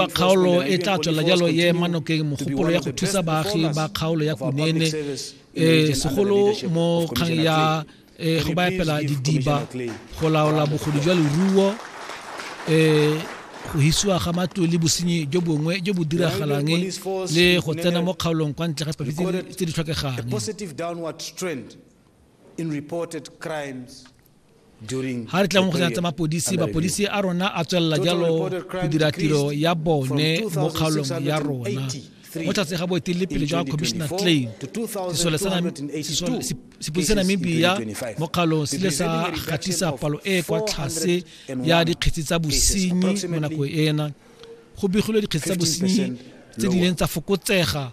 Fa kgaolo e tla tswelela jalo e ema nokeng mogopolo ya go thusa baagi ba kgaolo ya Kunene e segolo mo kgang ya e, go ba epela didiba go laola bogodu jwa leruo e go hisiwa ga matlo le bosenyi jo bongwe jo bo diragalang le go tsena mo kgaolong kwa ntle ga tse di tlhokegang ga re tla mo kgotsa tsa mapodisi mapodisi a rona a tswelela jalo go dira tiro ya bone mo kgaolong ya rona mo tlase ga boeteledipele jwa commissioner claim sepodisi sa namibia mo kgaolong se ile sa gatisa palo e e kwa tlase ya dikgetsi tsa bosenyi mo nakong ena go begilwe dikgetsi tsa bosenyi tse di leng tsa fokotsega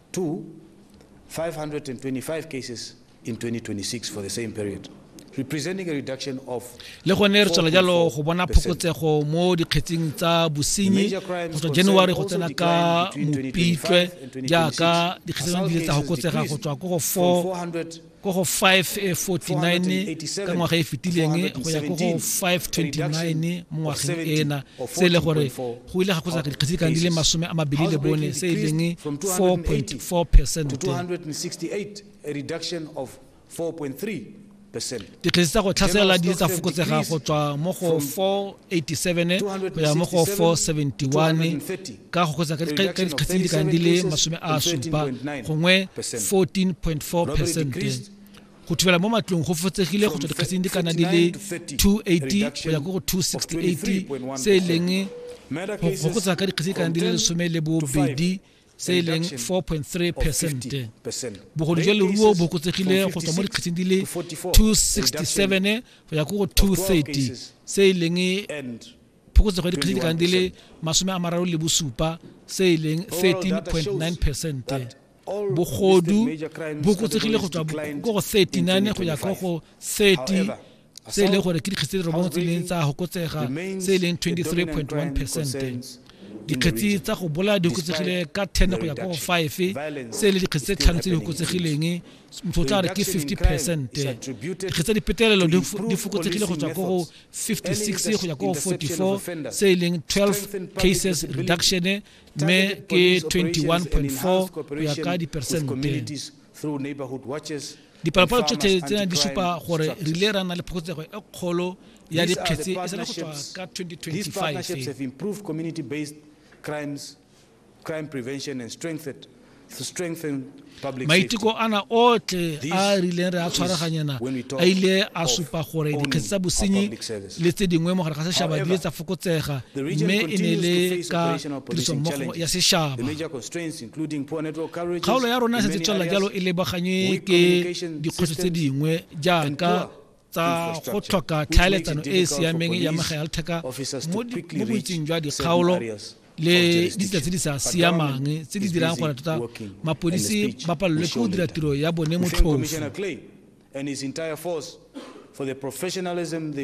to 525 cases in 2026 for the same period. le gone re tswela jalo go bona phokotsego mo dikgetsing tsa bosenyi go tswa january go tsena ka mopitlwe jaaka dikgetse di le tsa go kotsega go tswa ko go 4 ko go 549 ka ngwaga e fetileng go ya ko go 529 mo ngwageng ena se e le gore go ile ga kgotsa dikgetse kang di le masome a mabedi le bone se e leng 4.4 percent dikgetse tsa go tlhaselela di tsa fokotsega go tswa mo go 487 go ya mo go 471 ka go kgotsa ka dikgetse tse di kang di le masome a supa gongwe 14.4 percent go thibela mo matlong go fotsegile go tswa dikgetseng di kana di le 280 go ya go go 268 se e leng go fokotsa ka dikgetse di kana di le lesome le bobedi se e leng 4.3 percent bogolo jwa leruo bo kotsegile go tswa mo dikgetseng di le 267 go ya go go 230 se e leng phokotsego ya dikgetse ka di le masome a mararo le bosupa se e leng 13.9 percente bogodu bo kotsegile go tswa ko go 39 go ya ko go 30 se e leng gore ke dikgetse robong tse leng tsa gokotsega se e leng 23.1 percente dikgetsi tsa go bolaya di kotsegile ka 10 go ya ko go 5 se e le dikgetsi tse tlhano tse di kotsegileng motho o tla re ke 50 percent dikgetsi tsa dipetelelo di fokotsegile go tswa ko go 56 go ya ko 44 se e leng 12 cases reduction mme ke 21.4 go ya ka dipersente dipalopalo tsotlhe tsena di supa gore re ile ra na le phokotsego e kgolo ya dikgetse e sala go tswa ka 2025 maiteko ana otlhe a a rileng re a tshwaraganyana a ile a supa gore dikgetse tsa bosenyi le tse dingwe mogare ga sešaba di le tsa fokotsega mme e ne le ka tirisommogo ya sešaba kgaolo ya rona e setse tswelela jalo e lebaganye ke dikgwetlho tse dingwe jaaka tsa go tlhoka tlhaeletsano e e siameng ya megaeltheka mo boitseng jwa dikgaolo le ditsela tse di sa siamang tse di dirang gore tota mapodisi ba palelwe ke go dira tiro ya bone motlhofu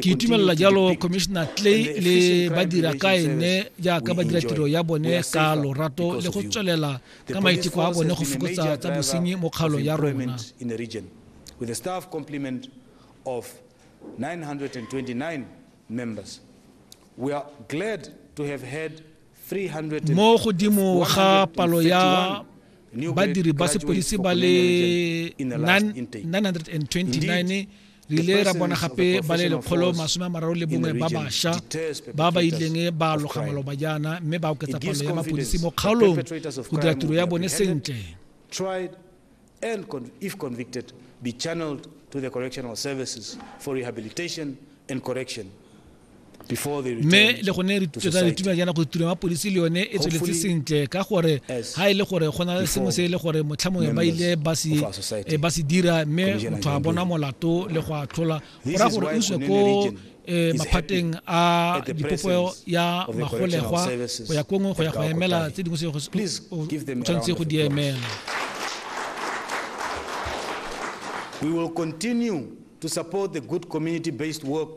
ke itumelela jalo commissioner clay le badira ka ene jaaka ba dira tiro ya bone ka lorato le go tswelela ka maiteko a bone go fokotsa tsa bosenyi mo kgaolong ya rona with a staff complement of 929 members. We are glad to have had 300. Mo godimo ga palo ya badiri ba sepodisi ba le 929 re ile ra bona gape ba le lekgolo masome a mararo le bongwe ba basha ba ba ileng ba loga maloba jaana mme ba oketsa palo ya mapodisi mo kgaolong go dira tiro ya bone sentle and if convicted, be channeled to the correctional services for rehabilitation and correction mme le gone tsa ditumelo jaana go tiro ya mapodisi le yone e tsweletse sentle ka gore ga e le gore go na le sengwe se e le gore motlha mongwe ba ile ba se eh, dira mme motho a bona molato le go atlhola go ra gore o iswe ko e maphateng a dipopeo ya magolegwa go ya kongwe go ya go emela tse dingwe se o tshwanetse go di emela We will continue to support the good community-based work